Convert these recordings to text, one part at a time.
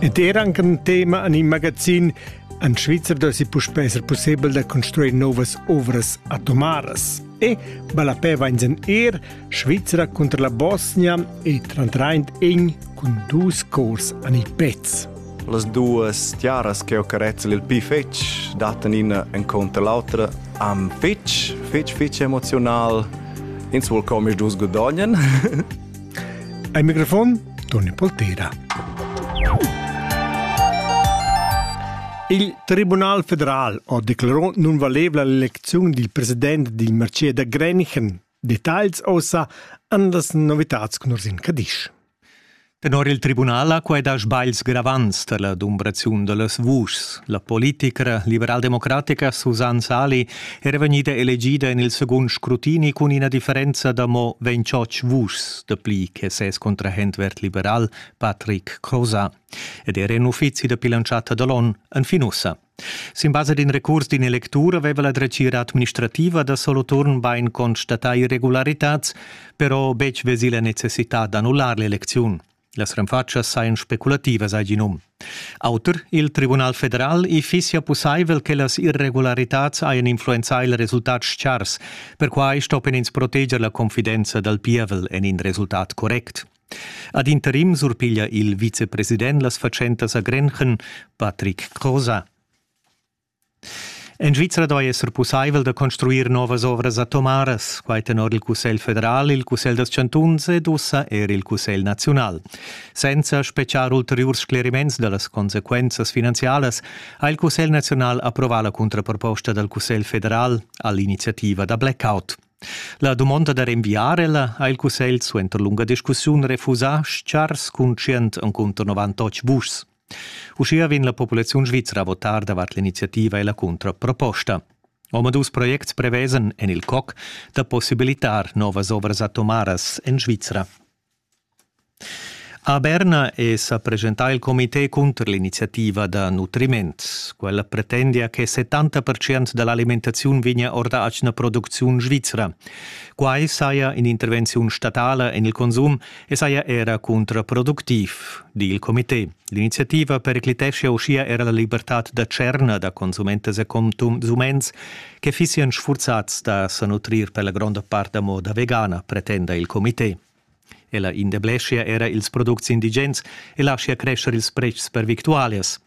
Ed era anche un tema en il magazin en Svizzera si puspè esser possibel da construir novas ovras atomaras. E Balapè va in er Svizzera contro la Bosnia e trantraint in cun dus cors an il pezz. Las duas tiaras che ho carezzel il pi fetg dattan ina en conter l'autra am fetg, fetg, fetg emozional. Ins vuol comisch dus godognen. Ai microfon Toni Poltera. Il Tribunal federal ha declarato non valevole l'elezione del presidente del marché da Grenichen. Details ossa an las novitats con Ursin Cadisch. Tenor il tribunal ha quai dà sbagls gravants tar la dumbraziun da las vuschs. La politicra liberaldemocratica Susanne Sali era vegnida elegida en il segund scrutini cun ina differenza da mo ventschotg vuschs dapli che ses contrahent verd-liberal Patrick Croza ed era in uffizi da bilantschatta da l'ON enfin ussa. Sin basa d'in recurs d'in electur aveva la dretgira administrativa da Soloturn bain constatà irregularitads, però betg vesì la necessità d'annullar l'elecziun. Las renfatschas sajan speculativas, ha gì num. Auter il Tribunal federal i fissia pussaivel che las irregularitads hajan influenzà il resultat chars. Perquai stoppian ins proteger la confidenza dal pievel en in resultat correct. Ad interim surpiglia il vicepresident las fatschentas a Grenchen, Patrick Crosa. En Svizra doi esser pussaivel da construir novas ovras atomaras, quai tenor il Cussegl federal, il Cussegl dals chantuns ed ussa er il Cussegl naziunal. Senza speciar ulteriurs scleriments da las consequenzas finanzialas ha il Cussegl naziunal approvà la contraproposta dal Cussegl federal all'iniziativa da blackout. La dumonda da renviar ella ha il Cussegl suenter lunga discussiun refusà, schars cun 100 encunter 98 vuschs. Uschia vegn la populaziun svizra a votar davart l'iniziativa e la cuntraproposta. Omadus projects prevesan en il COC da possibilitar novas ovras atomaras en Svizra. A Berna è sa presentà il comité cunter l'iniziativa da nutriment. Quella pretendia che 70% da l'alimentaziun vegnia or da atgna producziun svizra. Quai saja in'intervenziun statala en il consum e saja era contraproductiv, di il comité. L'iniziativa pericliteschia uschia era la libertad da tscherna da consumentas e consuments che fissian sfurzats da sa nutrir per la gronda part da moda vegana, pretenda il comité. Ella indebleschia era ils products indigens e laschia crescer ils pretschs per victualias.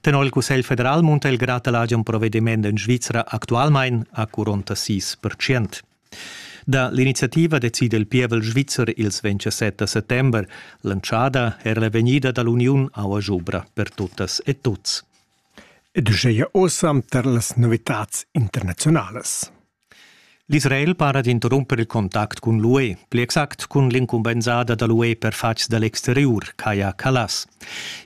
Tenor il Cussegl federal munta il grad da l'agen provediment en Svizra actualmain a 46 percent. Da l'iniziativa decida il pievel svizzer ils 27 da settember. Lantschada era la vegnida dall'Uniun Aua Jubra per tuttas e tuts. Ed uscheia osam tar las novitats internazionalas. L'Israel para d'interrumper il contact cun l'UE, pli exact cun l'incumbensada da l'UE per fatgs da l'exteriur, Kaya Kallas.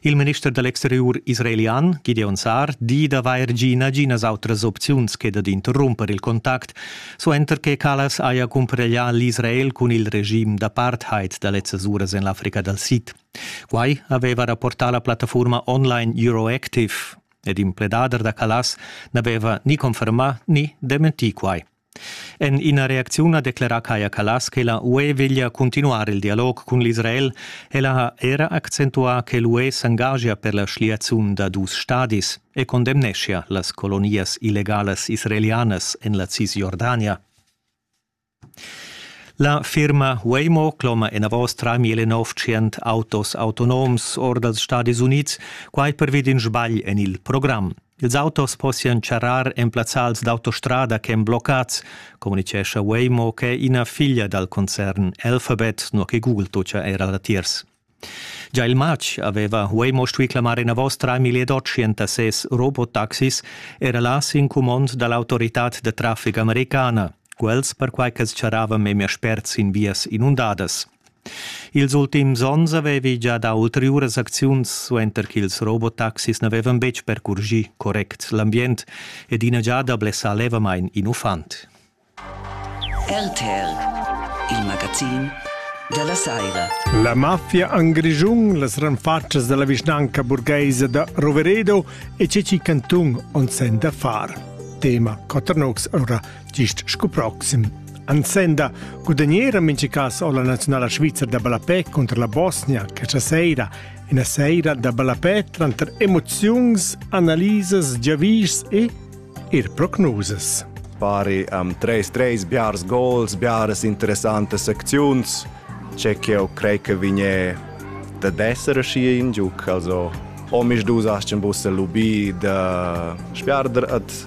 Il minister da l'exteriur israelian, Gideon Saar, di d'avair gì naginas autras opziuns che dad interrumper il contact, suenter che Callas haja cumpareglià l'Israel cun il regim d'apartheid da lezzas uras en l'Africa dal Sid. Quai aveva rapportà la plattaforma online Euroactive ed il pledader da Callas n'aveva ni confermà ni dementì quai. En ina reacziun ha declerà Kaja Kallas che la UE veglia cuntinuar il dialog cun l'Israel. Ella ha era accentuà che l'UE s'engagia per la schliaziun da dus stadis e condemneschia las colonias illegalas israelianas en la Cisjordania. La firma Waymo cloma enavos 3.900 autos autonoms or dals Stadis Unids, quai pervi d'in sbagl en il program. Ils autos possian charrar en plazzals d'autostrada ch'èn bloccats, communitgescha Waymo ch'è ina figlia dal concern Alphabet, nua che Google tutgia era latiers. Già il matg aveva Waymo stuì clamar enavos 3800 robotaxis, era là sin cumond da l'autoritad da traffic americana, quels perquai ch'els charravan memia spert sin vias inundadas. Ils ultims onns avevi gia dà ulteriuras acziuns suenter ch'ils robotaxis n'avevan betg percurgì correct l'ambient ed ina giada blessà levamain in uffant. RTL, il magazin da la saira. La mafia en Grischun, las renfatschas da la vischnanca burgaisa da Roveredo e Ceci Cantun on sen da far. Tema Coternox ora Gist sco proxim. Ansenda gudagnera mincha cas o la nazionala svizra da ballapè conter la Bosnia questa seira ina seira da ballapè tranter emoziuns, analisas, giavischs e er prognosas. Pari am 3-3 biars gols, biaras interessantes acziuns. C'è che eu crei che vigne da d'essere schi in giuc, also om ich du sagst ein bisschen lubì da sperder at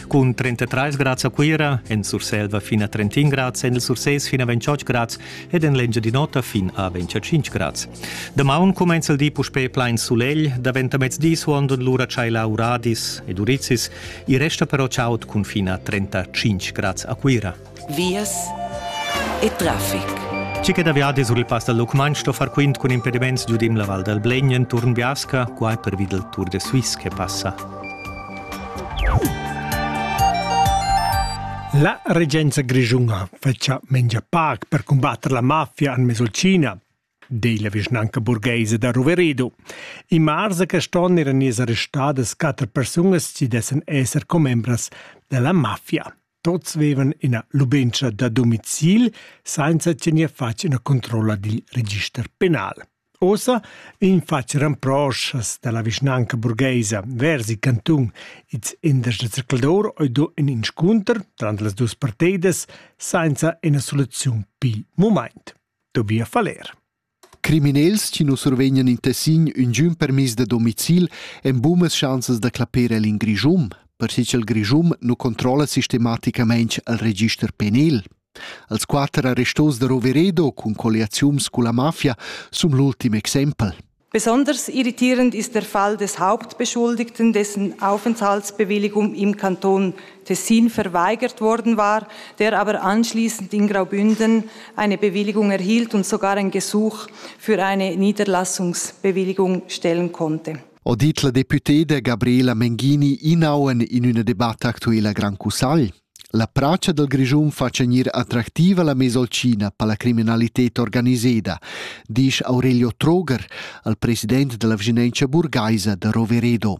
cun 33 grads a Cuira, en Surselva fin a 31 grads, en il Surses fin a 28 grads ed en l'Engiadin'Ota fin a 25 grads. Damaun cumenza il di puspè plain sulegl, daventa mezdi suond lura tschaila uradis ed urizis, i resta però chaud cun fin a 35 grads a Cuira. vias e traffic. Ci che da viadi sur il pass dal Lucmagn sto far quint cun impediments giudim la Val dal Blegn enturn Biasca, qua è pervi dal Tour de Suisse che passa. La regenza grischuna fetcha mengia pac per combatter la mafia en Mesolcina, di la vischnanca burgheisa da Roverido. In mars a quest'on eran ies arrestadas quatter persunas ci dessen esser commembras della mafia. Tuts vevan ina lubentscha da domicil sainza tener fatg ina controlla dil register penal. Ossa vegn fatg ramproschas dalla vischnanca burgheisa vers il cantun its indas da zercladur oi do in inscunter trant las dus parteidas sainza ina soluziun pil mumaint. Tobia Faller. Criminels chi nu survegnan in Tessin üngiün permiss da domicil han bunas schanzas da clapper el in Grischun, perche cha'l Grischun nu controlla sistematicamaing al register penal. Els quatter arrestos da Roveredo cun colliaziuns culla mafia sun l'ultim exempel. Besonders irritierend ist der Fall des Hauptbeschuldigten, dessen Aufenthaltsbewilligung im Kanton Tessin verweigert worden war, der aber anschließend in Graubünden eine Bewilligung erhielt und sogar ein Gesuch für eine Niederlassungsbewilligung stellen konnte. ho dit la deputeda Gabriela Menghini inauen in üna debatta actuela Gran Cussagl. La pracia del Grischun fa gnir attractiva la mesolcina per la criminalità organiseda, disch Aurelio Troger, al president della Vginenza burgaisa da Roveredo.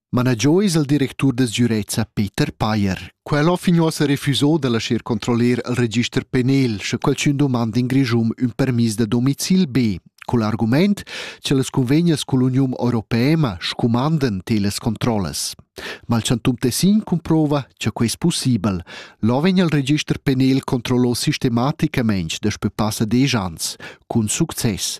Managiò es il directur da sgürezza Peter Payer. Quel ho fin uossa refusò da lascher controller il register penal, sche qualchün domanda in Grischun ün permis da domicil be, cul argument che las convegnas cull'Uniun Europeema scumandan telas controllas. Ma il Chantum Tessin comprova che quai es possibel. Là vegn il register penal controllò sistematicamente daspö passa desch ans, cun success.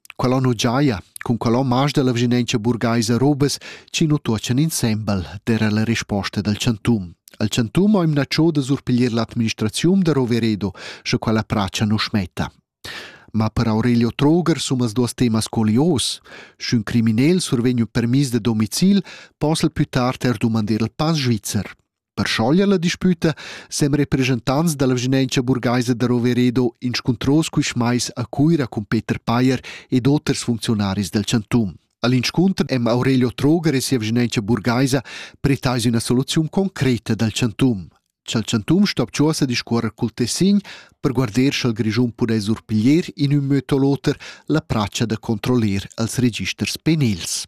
Quella nu giaja cun quella marsch dalla vischinanza burgaisa robas chi nu tuochan insembel, d'eira la risposta dal chantun. Al chantun ho imnatschò da surpiglier l'administraziun da Roveredo, sche quella pracha nu smetta. Ma per Aurelio Troger sun as duos temas colios. Sch'ün criminel survegn ün permis da domicil, possa'l plü tard er dumander il pass svizzer. Per schoglier la disputa sem representants dalla vischnanca burgaisa da Roveredo inscuntros quist mais a Cuira cun Peter Payer ed oters funcziunaris del chantum. All'inscunter hem Aurelio Troger e sia vischnanca burgaisa pretais üna soluziun concreta dal chantum. Cha'l chantum sto abchuossa discuorrer cul Tessin per guarder scha'l Grischun pudess surpiglier in ün möd o l'oter la pracha da controllir als registers penils.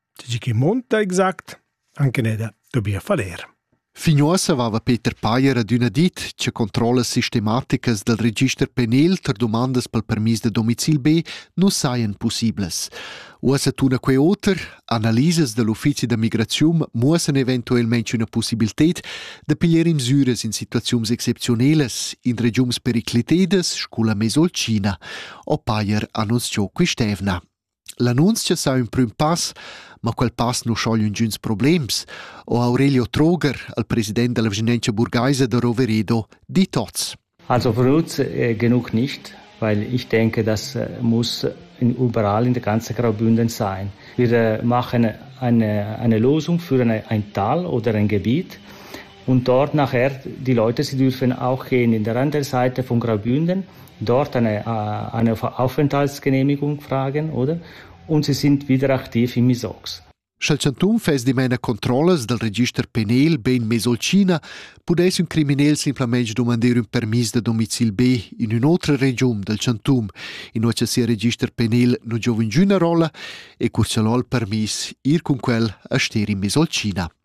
Tgi che monta exact, anche ne da dobia faler. Fin uossa aveva Peter Payer adüna dit che controllas sistematicas dal register penal tar dumandas pel permis da domicil B nu sajan pussiblas. Uossa tuna quei oter, analisas da l'uffizi da migraziun muossan eventuelmente üna possibilität da piglier misüras in situaziuns exceptionelas in regiuns periclitedas sculla Mesolcina, o Payer annunziò quist'evna. L'annunzia sa ün prüm pass, ma quel pass nu schogl üngüns problems, ho Aurelio Troger, il president della Vigilenza burgaisa da Roveredo, dit hoz. Also für uns äh, genug nicht, weil ich denke, das äh, muss überall in der ganzen Graubünden sein. Wir äh, machen eine, eine Lösung für eine, ein Tal oder ein Gebiet, Untort nachher die Leute sie dürfen auch gehen in der Randseite von Graubünden dort eine eine Aufenthaltsgenehmigung fragen oder und sie sind wieder aktiv im ISOX. Sch'el chantun fess dimena controllas dal register penal bein Mesolcina, pudess ün criminel simplamaing dumandir ün permis da domicil B in ün'otra regiun dal chantun, inua cha sia register penal non giova ingüna rolla e cur cha l'ho il permis ir cun quel a ster in Mesolcina.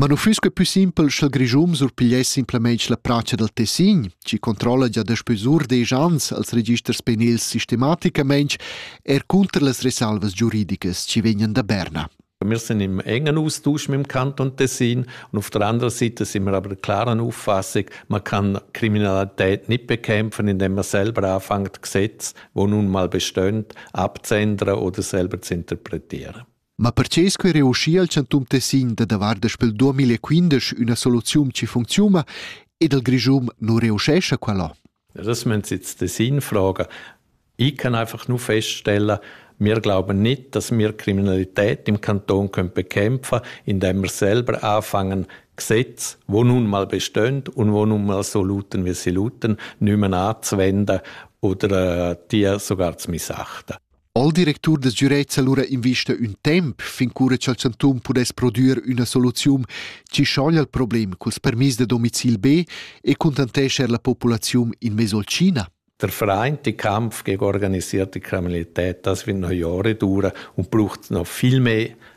Ma nu füss que pü simpel sch'el Grischun surpigliess simplamaing la pracha dal Tessin, chi controlla già daspö sur desch ans els registers penils sistematicamaing eir cunter las resalvas giuridicas chi vegnan da Berna. Wir sind im engen Austausch mit dem Kanton Tessin und auf der anderen Seite sind wir aber der klaren Auffassung, man kann Kriminalität nicht bekämpfen, indem man selber anfängt, Gesetze, die nun mal bestehen, abzuändern oder selber zu interpretieren. Ma perche sco era uschia il chantun Tessin da davar daspel 2015 üna soluziun chi funcziuna ed il Grischun nu reuschescha quella? Das müssen Sie jetzt Tessin fragen. Ich kann einfach nur feststellen, wir glauben nicht, dass wir Kriminalität im Kanton können bekämpfen können, indem wir selber anfangen, Gesetze, wo nun mal bestehen und wo nun mal so lauten, wie sie lauten, nicht mehr anzuwenden oder äh, die sogar zu missachten. Il directur da sgürezza lura invista ün temp fin cura cha'l chantun pudess prodüer üna soluziun chi schoglia il problem culs permiss da domicil B e cuntantescher la populaziun in mezzo al China? Der Vereinte Kampf gegen organisierte Kriminalität, das wird noch Jahre dauern und braucht noch viel mehr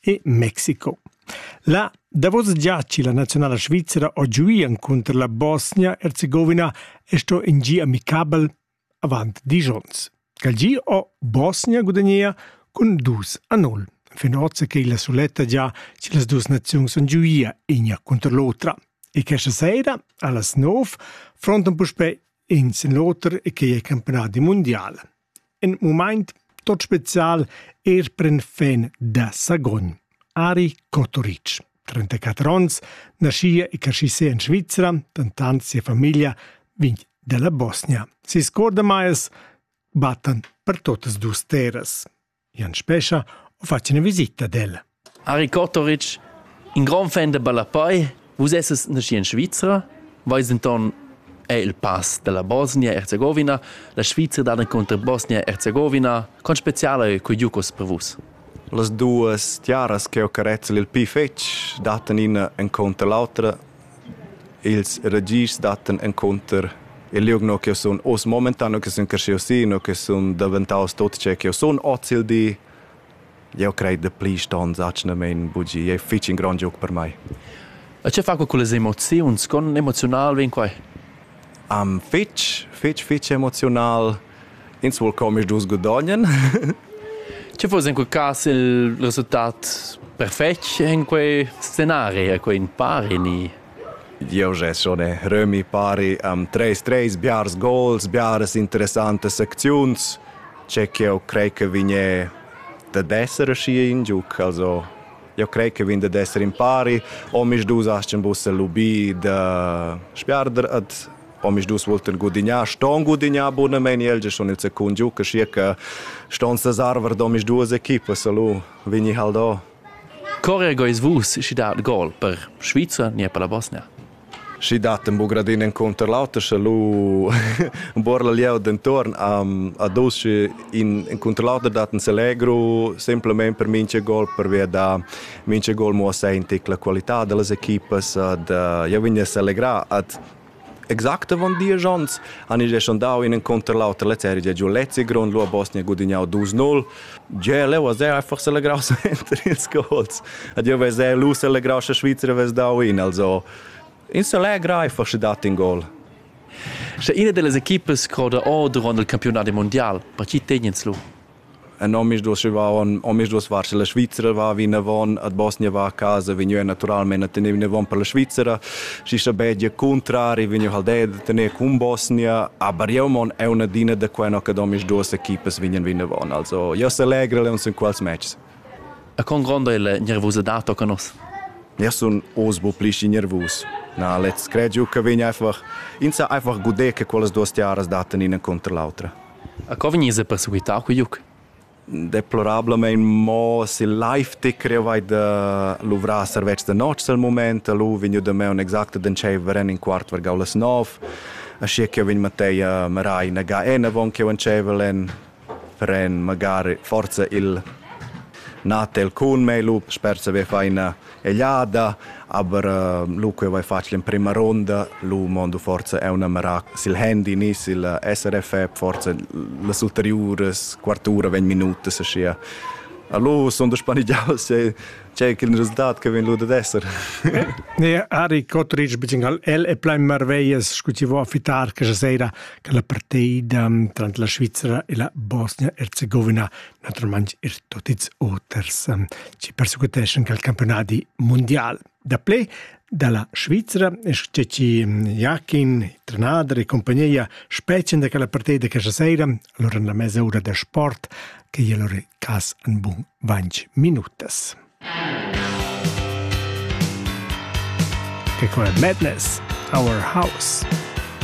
e Mexico. La davos giaci la nazionala svizzera ho giuian cunter la Bosnia-Herzegovina e sto in gi amicabel avant dis ons. Cal gi ho Bosnia gudagnea cun 2 a 0. Fin ozza che la suletta già ci las duas nazioni son giuia igna contro l'otra. E questa sera, allas 9, frontan puspè in sin l'oter e che è campionat di mondiale. In mumaint tot special eir pren fin da Sagogn. Ari Kotoric, 34 ons, naschia e cresci se in Svizzera, dentant sia famiglia vegn dalla Bosnia. Si scordamais battan per totas dus terras. Jan Spescha ho fat üna visita ad el. Ari Kotoric, in grand fan da ballapei, vus esses naschi in Svizra, vais denton è il pass della Bosnia-Herzegovina, la Svizra dada contro Bosnia-Herzegovina, con speciale co giucos per vus. Las duas tiaras che ho carezzel il pli fetg dattan ina en conto l'autra Ils ragischs dattan encunter il liug no ch'jeu sun oz momentan, no che sun creschius si, no che sun daventaus tot ce ch'jeu sun oz il di. Jeu crei da pli ston atgnamein bugir. Ei fetg in grond giug per mei. E che fa quei cullas emoziuns? Con emoziunal vegn quei? Fetg, fetg, fetg emoziunal. Ins vuol co omisdus gudognen. Che fuss in quel cas il resultat perfetg in quei scenario, quei in pari ni? Jeu gest schon ne remi pari am treis treis biars gols, biaras interessantas acziuns, che ch'jeu crei che vigne dad esser aschia in giug, also jeu crei che vegn dad esser in pari, omisdus astgan buca lubir da sbiarder ad omisdus volten gudignar ston gudignar bunamein el schon il secund giu che schier che ston ses arver d'omisduas equipas lu vegni hal do Corre gois vus schi dat gol per Svizra ni per la Bosnia Schi dat ein bugradin enconter l'auter sche lu buor la lieu dentorn am a dus sche in enconter l'auter dat ein Selegro semplamein per minche gol per via da minche gol mo a senti la qualità dellas equipas ad ja vegn a selegrar ad Exact avon diesch onns han ils sondau in enconter l'auter leteri da giu Lezigron, lu ha Bosnia gudignau 2-0. Gia leu veser ei forse legraus enter ils gols. Ad jeu veser lu selegraus che Svizra vess dau in, also in selegrai forse dat in gol. Sche ina delle equipes croda or durant il campionat mondial, per chi tegnens lu? En omisdus on omisdus var la Svizra va vinavon ad Bosnia va a casa vegniu naturalmente a tener vinavon per la Svizra si sta bedia contrari vegniu hal de tener cun Bosnia aber jeu mon è una dina da quella che omisdus equipas vegnan vinavon also io se legre le uns in quals matches A con gronda è la nervosa dato con nos? Ja sun os bo pli nervus Na, let's credo che vegna einfach, insa einfach gude che quellas duas tiaras daten ina contro l'altra. A co vegniva perseguità quei liug? Deplorablamein mo sil live ti creu hai da luvrar servetschs da notg al mument. Lu vegn da me un exact d'entscheiver en in quart vargau las nov. Aschia ch'jeu vegn matei a marai ina ga enavon ch'jeu entscheivel en pren magari forza il natel cun mei. Lu sper saver far ina egliada, aber uh, lu quei vai facil in prima ronda, lu mondo forza è una merac sil handy ni sil SRF forza las ulteriuras quartura vegn minuta se sia Allora sono spanigiato se c'è il risultato che viene ad essere. Ne Ari Cotric bigingal el e plein marveias scutivo a fitar che sera che la partida tra la Svizzera e la Bosnia-Herzegovina naturalmain er tot ils oters ehm, chi persecuteschan quel campiunadi mundial. Daplè dalla Svizra, che ci mm, Jakin, trenader e compagnia specen da quella partida che stasera, allora nella mezz'ora del sport, che gli allora cas un buon 20 minutas. Che qua è Madness, Our House.